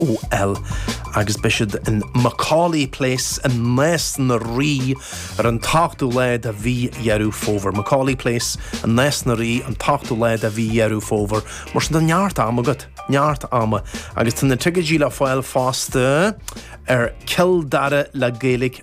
Agus beidh siad in Macaulay Place i nAos na Rí ar an t-ochtú lá de mhí Dheireadh Fómhair. Macaulay Place i nAos na Rí an t-ochtú lá de mhí Dheireadh Fómhair. Mar sin tá neart am agat, neart ama. Agus tá na ticéidí le fáil fosta ar Cill Dara le Gaeilge.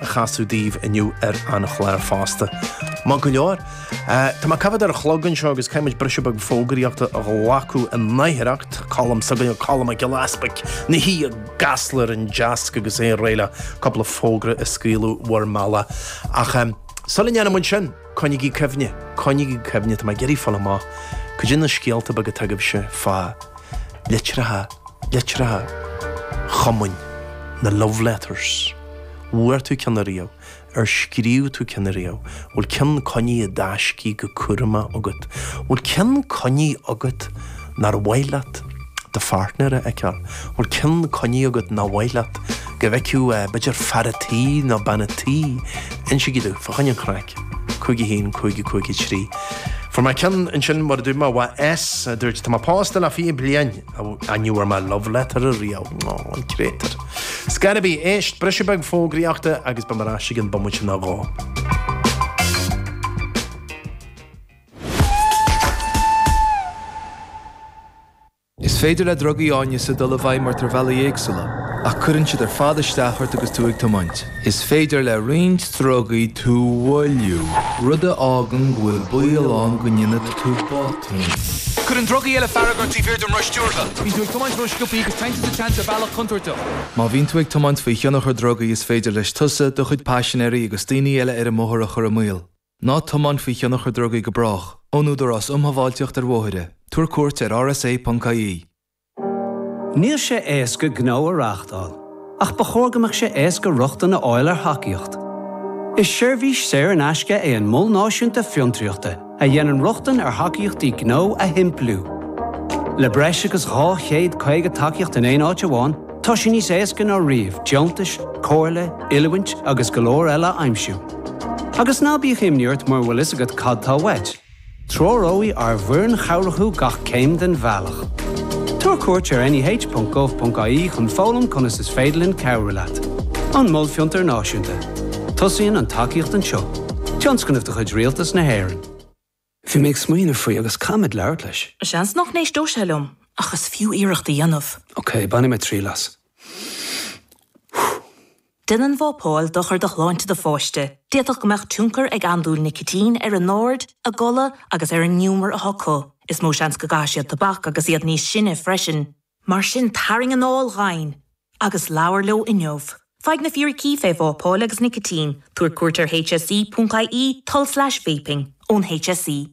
a chasadh daoibh inniu ar an chlár fosta. Maith go leor. Tá mé ag coimhéad ar a chlog anseo agus caithfimid briseadh beag fógraíochta a ghlacadh in aicearracht, Colm s'againne, Colm Mac Giolla Easbaic, ina shuí i gCasla ar an deasc agus é réidh le cúpla fógra a scaoileadh bhur mbealach. Ach sula ndéanann muid sin, coinnigí cuimhne, coinnigí cuimhne, tá mé ag iarraidh a fháil amach cuid de na scéalta beaga atá agaibhse fá litreacha, litreacha chumainn, na love letters. Bhfuair tú ceann ariamh? Ar scríobh tú ceann ariamh? Bhfuil ceann coinnithe i dtaiscidh go cúramach agat? Bhfuil ceann coinnithe agat nár mhaith leat do pháirtnéir é a fheiceáil? Bhfuil ceann coinnithe agat nár mhaith leat go bhfeicfeadh, b'fhéidir, fear a' tí nó bean a' tí? Insigí domh, fá choinne an chraic. 5 1 5 5 3 Fuair mé ceann ansin mar a dúirt mé uaidh S, a dúirt, tá mé pósta le 20 bliain. Ní bhfuair mé love letter ariamh. Aww, an créatar. Scríobhaigí, éist, briseadh beag fógraíochta agus beimid ar ais i gcionn bomaite nó dhó. Is féidir le drugaí áineasa dul i bhfeidhm ort ar bhealaí éagsúla, ach cuireann siad ar fad isteach ort agus tú ag tiomáint. Is féidir le roinnt drugaí tú mhoilliú, rud a fhágann go bhfuil baol ann go ndéanfaidh tú botúin. Cuireann drugaí eile fearg ort taobh thiar den roth stiúrtha. Bíonn tú ag tiomáint rósciobtha agus téann tú sa tseans ar bhealach contúirteach. Má bhíonn tú ag tiomáint faoi thionchar drugaí is féidir leis tusa, do chuid paisinéirí agus daoine eile ar an mbóthar a chur i mbaol. Ná tiomáin faoi thionchar drugaí go brách, ón Údarás Um Shábháilteacht ar Bhóithre, tabhair cuairt ar rsa.ie. Níl sé éasca gnó a reáchtáil, ach ba chóir go mbeadh sé éasca rochtain a fháil ar thacaíocht. Is seirbhís saor in aisce é an Mol Náisiúnta Fiontraíochta a dhéanann rochtain ar thacaíochtaí gnó a shimpliú. Le breis agus 250 tacaíocht in aon áit amháin, tá sé níos éasca ná riamh deontais, comhairle, oiliúint agus go leor eile a aimsiú. Agus ná bíodh imní ort mura bhfuil fhios agat cad tá uait. Treoróidh ár bhfoireann chabhrach thú gach céim den bhealach. Tabhair cuairt ar neh.gov.ie chun foghlaim conas is féidir linn cabhrú leat. An Mol Fiontair Náisiúnta. Tosaíonn an tacaíocht anseo. Tionscnamh de chuid Rialtas na hÉireann. Bhí mé ag smaoineamh faoi agus caithfidh mé labhairt leis. Seans nach n-éisteoidh sé liom, ach is fiú iarracht a dhéanamh. Ok, bainfidh mé triail as. Déanann vapáil dochar do shláinte do pháiste, d'fhéadfadh go mbeadh tionchar ag andúil nicitín ar a n-aird, a gcodladh agus ar an ngiúmar atá acu. Is mó seans go gcaithfidh siad tobac agus iad níos sine freisin. Mar sin tarraing anáil dhomhain agus labhair leo inniu. Faigh na fíricí faoi vapáil agus nicitín, tabhair cuairt ar hse.ie, tulslais vaping, ón hse.